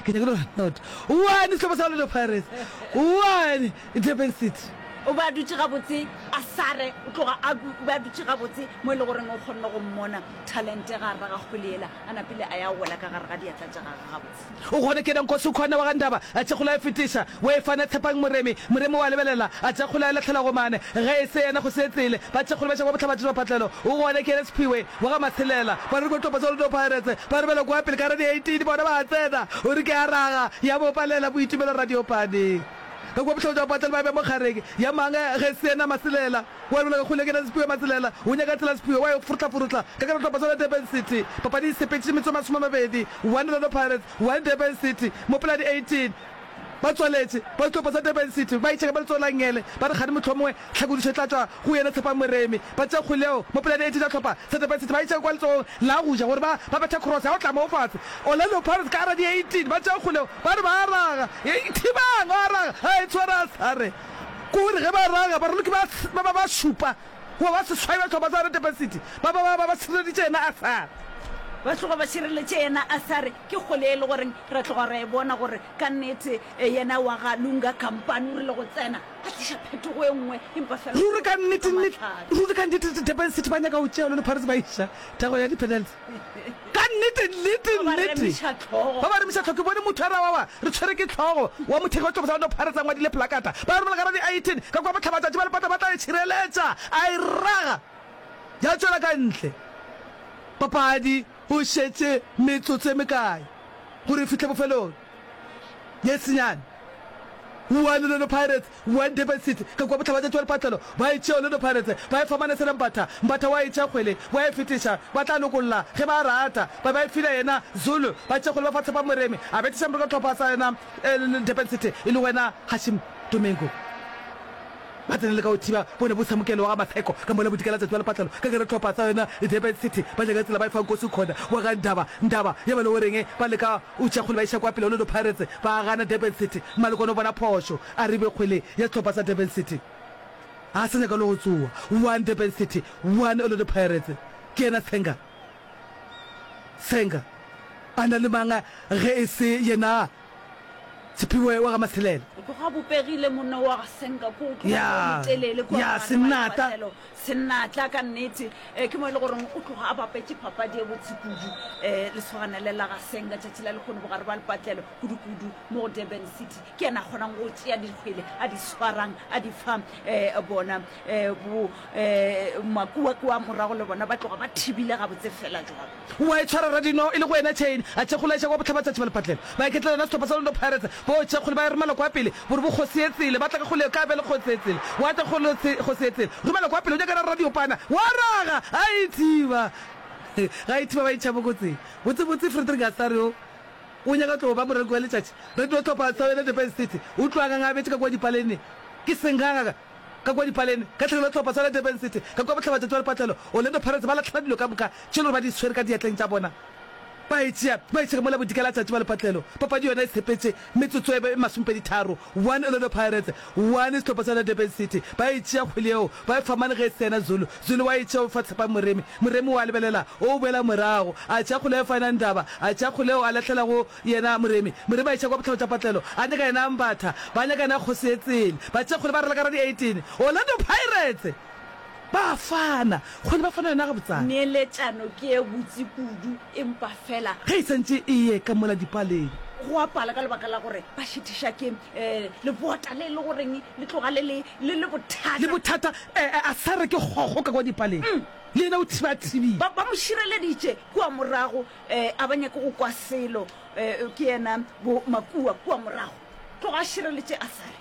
Ke nyakile gore not one sehlopha sa Orlando Pirates one Durban City. O be a dutše gabotse a sare o tloga a o be a dutše gabotse mo e le goreng o kgonne go mmona talente ga rra ga kgwele ela a napile a ya wela ka gare ga diatla tša gage gabotse. O gona ke ena Nkosi o kgona wa ga Ndaba a tše kgolo a e fetiša o e fana Tshepang Moremi, Moremi o a lebelela a tše kgolo a e lahlela go mane ge e se yena go se tsele ba tše kgolo ba tšaba bohlabadira phatlelo o gona ke ena Sephiwe. Wa ga Maselela, ba re ko Tlopotsoloto Pirates, ba re bjalo kwa pele ka Radio 18 bona ba a tsena, o re ke a raga, ya bo palela Boitumelo Radiopane. Ka kua bohloko jwa Patlelo ba be mo kgareng ya mang ge se yena Maselela, o a lebolega kgole ke na Sepiwe Maselela, o nyaka tsela Sepiwe, wa e forohlaforohla ka ka Tlopotsoloto Durban City, papadi e sepetše metsotso masome a mabedi, 1 Orlando Pirates, 1 Durban City, mo Poladi 18. Ba tswaletše ba dihlopha tša Durban City ba itšheka ba letsogo la Ngele ba re kgane mohlomongwe tlhakodišo e tla tšwa go yena Tshepang Moremi. Ba tša kgwele yeo mo pelane e tee tša dihlopha tša Durban City ba itšheka kwa letsogong la go ja gore ba ba bethe cross ya go tla moo fase. Orlando Pirates ka ara di 18 ba tša kgwele yeo ba re ba a raga. Hei Tshibang o a raga a e tshwara a sa re ke gore ge ba raga baraloki ba ba ba ba šupa goba ba seswai ba dihlopha tsa yona Durban City ba ba ba ba ba šireleditše yena a sa re. Ba tloga ba šireletše yena a sa re. Ke kgole e le goreng ra tloga ra e bona gore ka nnete yena wa ga Lunga Kampane o rile go tsena a tliša phetogo e nngwe empa fela go Ruri ka tloga nnete, ka nnete, mahlale. ruri ka nnete, nnete, Durban City ba nyaka go tšea lone Pirates ba iša thego ya di-penalty. Ka nnete, nnete, Ba ba nnete, remiša tlhogo. ba ba remiša tlhogo. Ke bone motho a re, Awawa, re tshwere ke tlhogo, wa mothegi wa sehlopha sa Orlando Pirates a ngwadile plakata. Ba romela ka ra di-18, ka kwa bohlabatšatši ba lepata ba tla e tšhireletša, a e raga ya tšwela ka ntle papadi. Go šetše metsotso e mekae gore e fihle bofelong? Ye senyane. Kua Orlando Pirates, kua Durban City, ka kua bohlabatšatši wa lephatlelo, ba e tšea Orlando Pirates, ba e fa Manesela Mbatha, Mbatha wa e tšea kgwele, wa e fetiša, ba tla lokolla ge ba rata, ba ba e file yena Zulu, ba tšea kgwele ba fa Tshepo Moremi, a betiša morokatlhopha sa yena Durban City, e lego yena Hashim Domingo. Ba tsene le ka go thiba bone bo samukelo wa ga Matheko ka mola bodika la tsatsi wa lepatlelo ka gare tlhopha sa yona Durban City ba nyaka tsela ba e fa Nkosi Khona wa ga Ndaba Ndaba ya ba le o reng ba leka o tšea kgwele ba iša kwa pele Orlando Pirates ba gana Durban City Malokwane o bona phošo a ribe kgwele ya tlhopha sa Durban City a sa nyaka le go tsoa one Durban City one Orlando Pirates ke yena Senga Senga a na le manga ge e se yena Tshepiwe wa ga Matshelela. Go ga bopegile monna wa ga Senka ko o tloga Ya, o motelele kwa ya, ngwana wa Sennata. Lewatlelo. Sennatla ka nnete eh, ke mo e le goreng o tloga a bapetše papadi e botse kudu um lesogana le la ga Senka tšatši la lekgono bogare ba lepatlelo kudu-kudu mo go Durban City ke yena a kgonang go tšea dikgwele a di swarang a di fa um bona um bo um makuakua morago le bona ba tloga ba thibile gabotse fela jwalo O a e tshwara rra Dino e le go ena chain a tšhekgola eša kwa bohlabatsatši ba lephatlelo. Baeketla yona sehlopha sa Londo Pirates bo tšhekgole ba e romela kwa pele bo re bo Kgosi Etsele ba tla ka go le ka bjale Kgosi Etsele wa tla go le Kgosi Etsele romela kwa pele o nyakana rra Diopana wa raga a e thiba ga a e thiba ba e tšha bokotsing botse botse Frederick a sa re o o nyaka tlo ba moreki wa letšatši re tlo hlopha sa wena Durban City o tlo a ngangabetše ka kwa dipaleneng ke senganga ka Ka kua dipalene, ka tlhagelo ya sehlopha sa la Durban City, ka kua bohlabatšatši wa lepatlelo, Orlando Pirates ba lahlele dilo ka moka tše e lego ba di swere ka diatleng tša bona, ba e tšea, ba e tšhega mola bodika la tšatši wa lepatlelo. Papadi yona e sepetše metsotso e be e masomepeditharo, 1 Orlando Pirates, 1 sehlopha sa la Durban City. Ba e tšea kgwele yeo, ba e fa mane ge e se yena Zulu, Zulu wa e tšea o e fa Tshepang Moremi, Moremi wa lebelela, o boela morago, a tšea kgwele ya Fynand Ndaba, a tšea kgwele yeo a lahlela go Yena Moremi, Moremi a iša kwa botlhabo tša patlelo, a nyaka yena a mbatha, ba nyaka yena kgosi e tsene. Batšekgole ba ralaka ra di 18, Orlando Pirates! Ba a fana, kgole ba fana yona gabotsana. Neeletšano ke e botse kudu, empa fela. Ge e santše e ye ka mola dipaleng. Go a pala ka lebaka la gore ba šethiša ke lebota le e le goreng le tloga le le, le le bothata. Le bothata, ee, a sa re ke kgokgo ka kwa dipaleng, le yena o thiba a thibile. Ba, ba mo šireleditše kua morago, Eh, a ba nyake go kwa selo. Eh, ke yena bo Makua kua morago. Tloga a šireletše a sa re.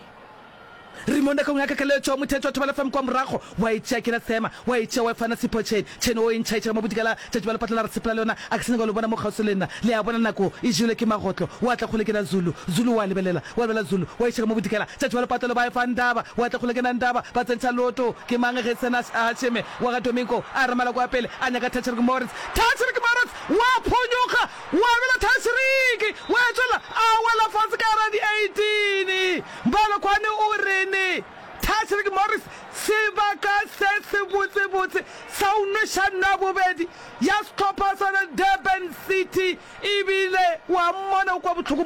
Rimonda ka go nyaka keletšo, mothetho wa Thobalafm kua morago wa e tšea ke la Sema, wa e tšea wa e fana Sipho Chen. Chen o e ntšhaetša ka mo bodikela tšatši ba lepatlela re sepela le yona, a ke sa nyaka go le bona mo kgauswi le nna. Le a bona nako e jele ke magotlo. Wa tla kgole ke na Zulu. Zulu wa lebelela, wa lebelela Zulu, wa iša ka mo bodikela tšatši ba lepatlelo ba e fa Ndaba, wa tla kgole ke na Ndaba, ba tsentšha loto. Ke mang ge e se na Hasheme wa ga Domingo? A re Maloko a pele a nyaka Tacharg Moritz. Taisiriki Marotse wa phonyoga, wa bela Taisiriki, wa etšwela, a wela fase ka gare ga di 18. Balokwane o rene? Taisiriki Morris, Sebaka se se botsebotse sa go nweša nna bobedi ya sehlopha sa the Durban City, ebile wa mmona o kwa bohloko mo.